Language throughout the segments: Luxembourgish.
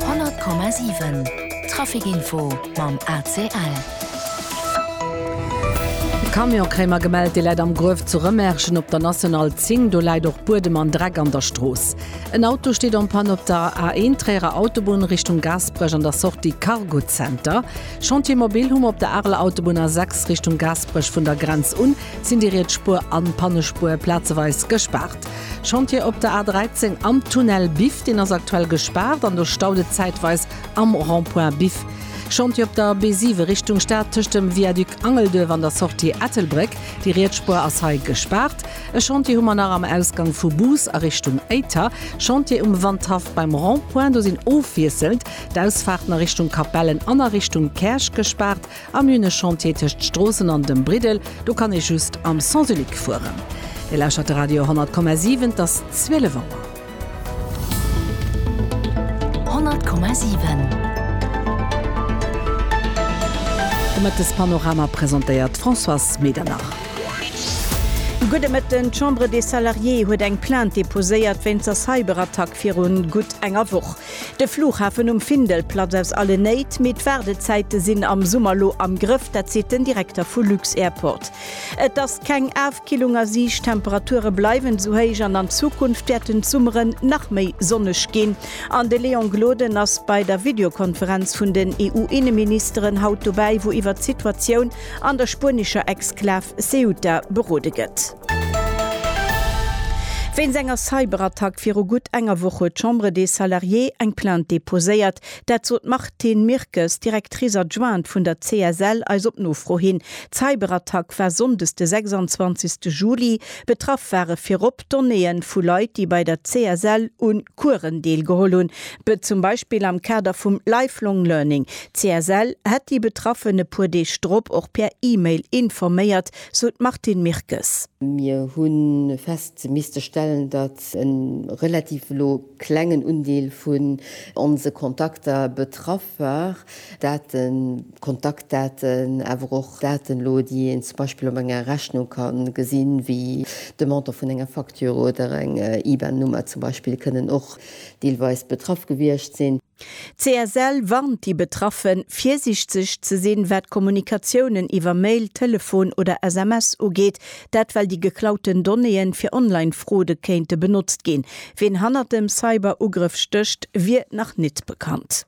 100,7 Trafic Info mam ACL. Camion Kréimer gemellt, dee läit am Gruef zu Rëmerschen op der National 10. Do läit och Buedem an Dreck an der Strooss. En Auto steet en panne op der A1 Tréierer Autobunn Richtung Gaasperech an der Sortie Cargo Center. Chantier Mobil hu mer op der Areler Autobunn A6 Richtung Gaasperech. Vun der Grenz un sinn déi riets Spuer an d'Pannespuer plazeweis gespaart. Chantier op der A13 am Tunnel Biff, deen ass aktuell gespaart an do staut et zäitweis am Rond-point Biff. Chantier op der B7 Richtung Stad tëscht dem Viaduc Angelduerf an der Sortie Ettelbréck, déi Rietsspuer ass hei gespaart. E Chantier hu mer nach am Ausgang vu Bous a Richtung Éiter. Chantier um Wandhaff beim Rond-point, do sinn ofwiesselnd d'Ausfaarten a Richtung Capellen an a Richtung Käerch gespaart. Am hunn e Chantier tëscht Stroossen an dem Briddel, do kann ee just am Sens unique fueren. Dir lauschtert de Radio 10,7, et ass 12 Auer. 10,7 De Mëttespanorama presentéiert d'Françoise Medernach. Gudde Mëtten, D'Chambre des Salariés huet eng Plainte deposéiert wéinst der Cyberattack virun gutt enger Woch. De Flughafen um Findel platz aus alle Néit, mee d'Waardezäite sinn am Summer lo am Grëff, dat seet den Direkter vu lux-Airport. Et ass keng Afkillung a Siicht, d'Temperature bleiwen esou héich an an Zukunft wäerten d'Summere nach méi sonneg ginn. An de Léon Gloden ass bei der Videokonferenz vun den EU-Inneministeren haut dobäi, wou iwwert d'Situatioun an der spuenescher Exklav Ceuta berode gëtt. Wéinst enger Cyberattack viru gutt enger Woch huet d'Chambre des Salariés eng Plainte deposéiert. Dat sot d'Martine Mirkes, Directrice adjointe vun der CSL, eis op Nofro hin. D'Cyberattack war sonndes de 26 Juli. Betraff ware virop d'Donnéeë vu Leit, déi bei der CSL u Coursen deelgeholl hunn, zum Beispill am Kader vum Lifelong Learning. D'CSL hätt déi Betraffen e puer Deeg drop och per E-Mail informéiert. sou d'Martine Mirkes. Mir hu fest misste stellen, datt e relativ elo klengen Undeel vun onse Kontakter betraff war, Daten, Kontaktdaten, awer och Daten elo, déi een zum Beispill op enger Rechnung ka gesinn, wéi de Montant vun enger Facture oder eng IBAN-Nummer zum Beispill, kënnen och deelweis betraff gewiescht sinn. D'CSL warnt déi Betraffen, virsiichtzeg ze sinn, wat d'Kommunikatiounen iwwer Mail, Telefon oder SMS ugeet, dat well déi geklauten Donnéeën fir Online-Fraude kéinte benotzt ginn. Ween hannert dem Cyber-Ugrëff stécht, wier nach nit bekannt.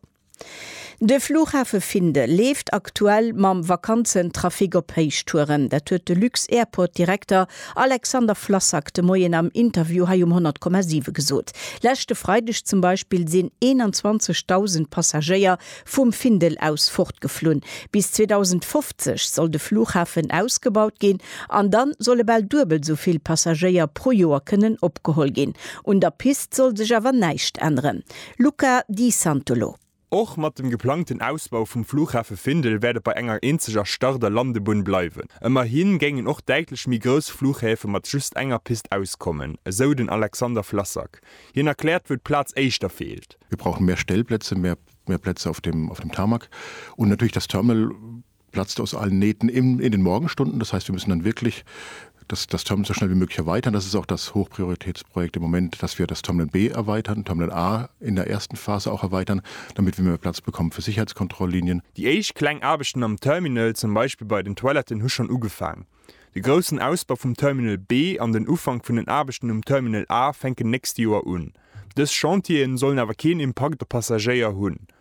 De Flughafe Findel leeft aktuell mam Vakanzentrafic op Héichtouren. Dat huet de Lux-Airport-Direkter Alexander Flassak de Moien am Interview hei um 100,7 gesot. Leschte Freideg zum Beispill sinn 21.000 Passagéier vum Findel aus fortgeflunn. Bis 2050 soll de Flughafen ausgebaut ginn an da solle bal duebel esou vill Passagéier pro Joer kënnen opgeholl ginn. Un der Pist soll sech awer näischt änneren. Luca Di Santolo. Och mat dem geplangten Ausbau vum Flughafe Findel wäert et bei enger eenzeger Start a Landebunn bleiwen. Ëmmerhi géingen och däitlech méi grouss Flughäfe mat just enger Pist auskommen, esou den Alexander Flassak. Hien erkläert, wou d'Plaz éischter feelt. Wir brauchen mehr Stellplätze, mehr Plätze auf dem Tarmac und natürlich das Terminal, platzt aus allen Nähten in, in den Morgenstunden. Das heißt, wir müssen dann wirklich das, das Terminal so schnell wie möglich erweitern. Das ist auch das Hochprioritätsprojekt im Moment, dass wir das Terminal B erweitern, Terminal A in der ersten Phase auch erweitern, damit wir mehr Platz bekommen für Sicherheitskontrolllinien. Déi éischt kleng Aarbechten am Terminal, zum Beispill bei den Toiletten, hu schonn ugefaang. De groussen Ausbau vum Terminal B an den Ufank vun den Aarbechten um Terminal A fänken nächste Joer un. Dës Chantieren sollen awer keen Impakt op Passagéier hunn.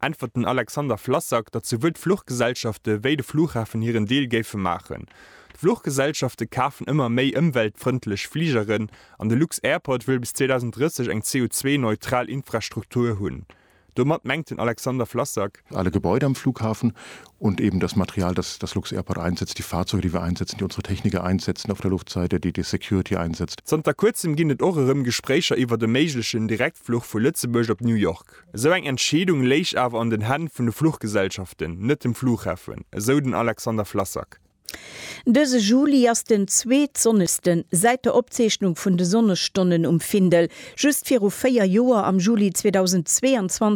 äntwert den Alexander Flassak, datt souwuel d'Fluchgesellschafte wéi de Flughafen hiren Deel géife maachen. D'Fluchgesellschafte kafen ëmmer méi ëmweltfrëndlech Fligeren an de Lux-Airport wëll bis 2030 eng CO2-neutral Infrastruktur hunn. Domat mengt den Alexander Flassak. Alle Gebäude am Flughafen und eben das Material, das das Lux-Airport einsetzt, die Fahrzeuge, die wir einsetzen, die unsere Techniker einsetzen auf der Luftseite, die die Security einsetzt. Zanter kuerzem ginn et och erëm Gespréicher iwwert e méiglechen Direktfluch vu Lëtzebuerg op New York. Esou eng Entscheedung léich awer an den Hänn vun de Fluchgesellschaften, net dem Flughafen, esou den Alexander Flassak. Dëse Juli ass den zweetsonnegste säit der Opzeechnung vun de Sonnesstonnen um Findel. Just viru véier Joer, am Juli 2022,